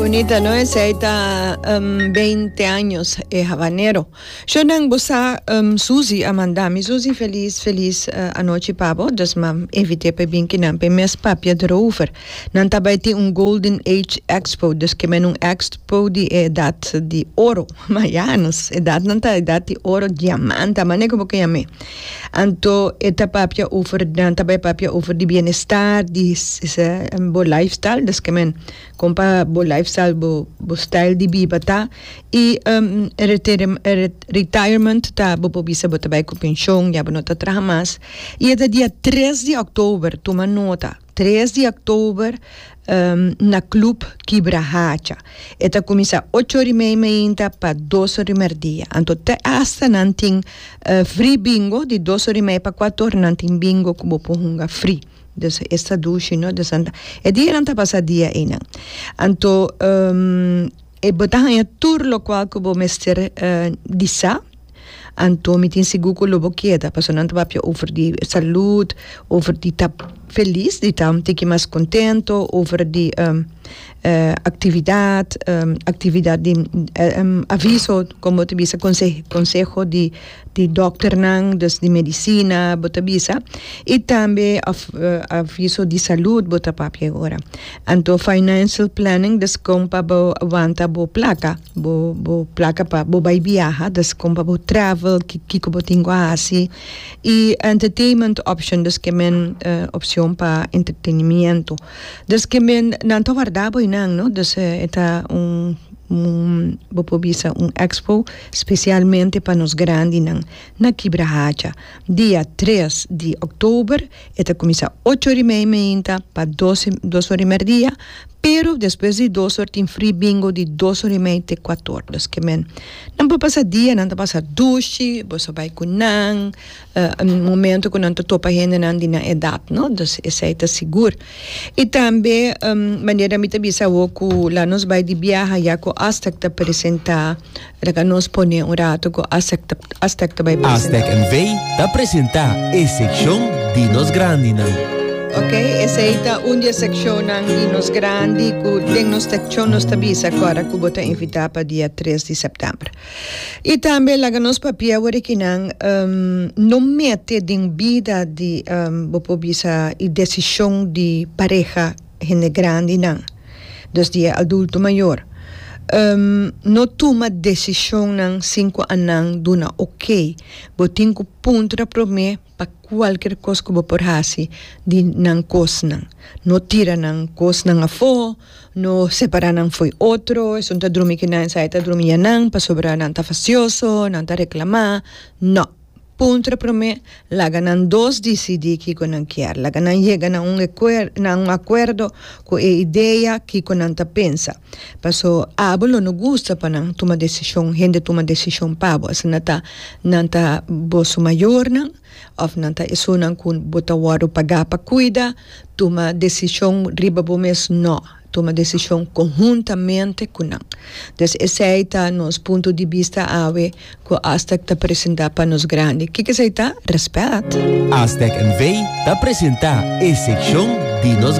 Bonita no esei ta um, beinti años e habanero. Sho nan bo sa um, Susi a manda mi Susi felis felis uh, anochi pa bo dus ma invite pa e bin kinan pa e mes papia derover. Nan ta bai tin un golden age expo dus ke men un expo di e edat di oro. Ma ya nos edat nan ta edat di oro diamante a mane ku bo ke yam'e. Anto e ta papia over, nan ta bai papia over di bienestar, di bo lifestyle, dus ke men kon pa bo lifestyle, bo bo stijl di biba ta, i retirement ta bo por bisa bo ta bai ku penshon, ya bo no ta traha mas, i e ta dia tres di òktober, tuma nota. Tres di oktober na club Kibra Hacha. E ta kuminsá ocho ora i media mainta pa dos ora di merdia. Anto te asta nan tin free bingo, di dos ora i media pa kuater ora nan tin bingo ku bo por hunga free. Dus es ta dushi, no? Dus e dianan ta basá dia einan. Anto bo ta haña tur lokual ku bo mester di sa. Anto mi tin sigur ku lo bo keda pasobra nan ta papia over di salud, over di ta felis di ta un tiki mas kontento, over di aktividat, aktividat di aviso kon bo ta bisa konse konseho di di dòkternan dus di medisina bo ta bisa i tambe av aviso di salud bo ta papia e ora. Anto financial planning dus kon pa bo wanta bo plaka. Bo bo plaka pa bo bai biaha dus kon pa bo travel kiko bo tin ku a hasi i entertainment option dus ke men opcion pa entretenimiento dus ke men nan ta warda bo einan no dus e ta un bo por bisa un expo specialmente pa nos grandinan na kibra hacha dia tres di october. E ta kuminsá ocho ora i media mainta pa dos dos ora i media dia, pero despues di dos ora tin free bingo di dos ora i media te kuatu ora. Los ke men nan por pasa dia nan ta pasa dushi, boso a bai ku nan momento ku nan ta topa hendenan di nan edat no, dus esei ta sigur. I tambe manera mi ta bisa awo ku la nos bai di biaha yaco Astec ta presentá Ora ka nos pone un rato ku Aztec ta Aztec ta bai presentá. Aztec NV ta presentá e sekshon di nos grandinan. Ok, esei ta un di e sekshonnan di nos grandi ku den nos sekshon nos ta bisa ku ora ku bo ta invitá pa dia tres di sèptèmber. I tambe laga nos papia worikinan no mete den bida di bo por bisa i desishon di pareha. hende grandinan, dos di e adulto mayor, no tuma decisionnan sin cu anan duna ok. Bo tin cu punto ta prome pa cualkier cos cu bo por haci di nan cosnan. No tira nan cosnan afo, no separa nan fo'i otro, esun ta drumi cu nan esai ta drumi ya nan, pasobra nan ta facioso, nan ta reclama, no. puntra promé, laga nan dos disidí kiko nan kier. Laga nan yega na un ekuer na un akuerdo ku e idea kiko nan ta pensa. Paso abo lo no gusta pa nan tuma desishon hende tuma desishon pa bo asina ta nan ta bo su mayornan òf nan ta esunnan ku bo ta wòrdu pagá pa kuida tuma desishon riba bo mes? Nò. tuma desishon konhuntamente ku nan. Des esei ta nos punto di bista awe ku Aztec ta presentá pa nos grandi. Kiko esei ta? Rèspèt! Aztec NV. ta presentá e sekshon di nos.